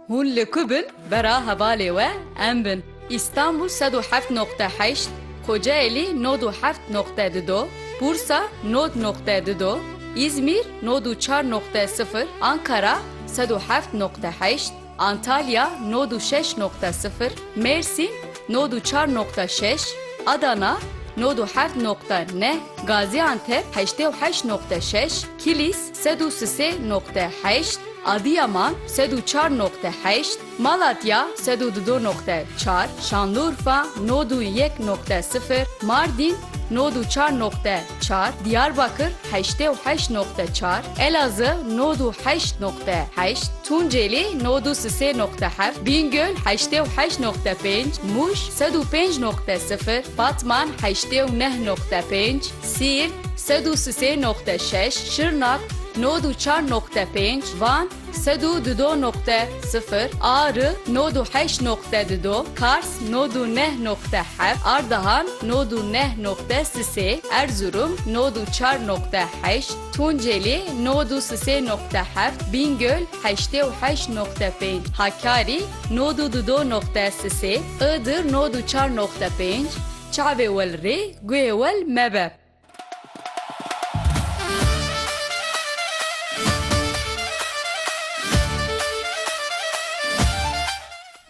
Hûn li ku bin bera hevalê we em bin. Îstanbûl sed û heft noqte heşt, Kocaelî nod û heft noqte du do, Bursa nod noqte du do, Îzmîr nod û çar noqte sifir, Ankara sed û heft noqte heşt, Antalya nod û şeş noqte sifir, Mêrsîn nod û çar noqte şeş, Adana nod û heft noqte neh, Gazîantep heştê û heşt noqte şeş, Kilîs, Sed û sisê noqte heşt, Adiyaman, sed û çar noqte heşt, Malatya, sed û dido noqte çar, Şanlurfa, nod û yek noqte sifir, Mardîn, nod û çar noqte çar, Diyarbakir, heştê û heşt noqte çar, Elazığ, nod û heşt noqte heşt, Tunceli, nod û sisê noqte heft, Bîngöl, heştê û heşt noqte pênc, Mûş, sed û pênc noqte sifir, Batman, heştê û neh noqte pênc, Siirt, sed û sisê noqte şeş, Şirnak, nod û çar noqte pênc, Van, sed û dudo noqte sifir, Ari, nod û heşt noqte dudo, Kars, nod û neh noqte heft, Ardahan, nod û neh noqte sisê, Erzurum, nod û çar noqte heşt, Tunceli, nod û sisê noqte heft, Bîngöl, heştê û heşt noqte pênc, Hakkari, nod û dudo noqte sisê, Iğdır, nod û çar noqte pênc, Çavê wel rê, guhê wel mebe.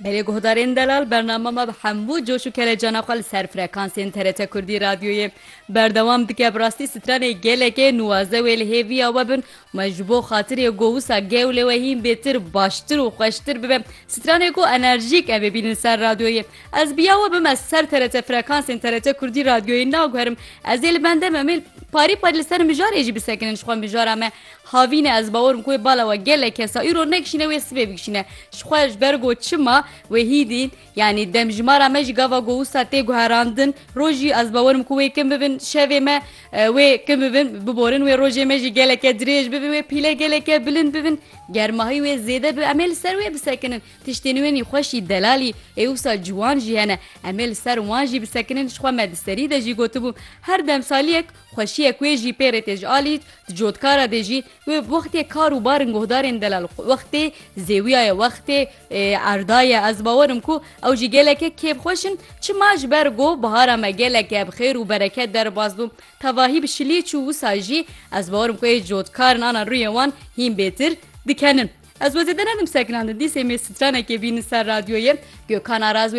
Belê guhdarên delal bernama me bi hemû coş û kelecana xwe li ser frekansên TRT Kurdî Radyoyê berdewam dike bi rastî stranê gelekê nuwaze wê li hêviya we bin û me ji bo xatirê ku wisa gewlê we hîn bêtir, baştir û xweştir bibe stranê ku enerjîk em ê bînin li ser radyoyê. Ez bi ya we bime ser TRT frekansên TRT Kurdî radyoyê naguherim. Ez ê li bende me mêl parî parî li ser mijarê jî bisekinin ji xwe mijara me havîne ez bawerim ku wê bala we gelek kesa îro nekişîne wê sibê bikişîne ji xwe ji ber go çima wê hîdîn yanî demjimara me jî gava go wisa tê guherandin rojî ez bawerim ku wê kin bibin şevê me wê kin bibin biborin wê rojê me jî geleke dirêj bibin wê pîle geleke bilind bibin germahî wê zêde bi em ê li ser wê bisekinin Tiştên nû ên xweşî delalî ê wisa ciwan jî hene. Em ê li ser wan jî bisekinin ji xwe me di serî de jî gotibû her demsaliyek xweşiyek wê jî pê rê tê ji alî di cotkara dê jî wê wextê kar û barin guhdarên delal wextê zêwiya ye wextê erda ye ez bawer im ku ew jî geleke kêfxweş in çima ji ber ku bihara me geleke bi xêr û bereket derbas bû tevahî bi şilî çû wisa jî ez bawer im ku ê cotkar in ana rûyê wan hîn bêtir dikenin. Ez wezî dinedim seklan di dîsê mêr stranekê bînin ser radyoyê Gökhan Araz wê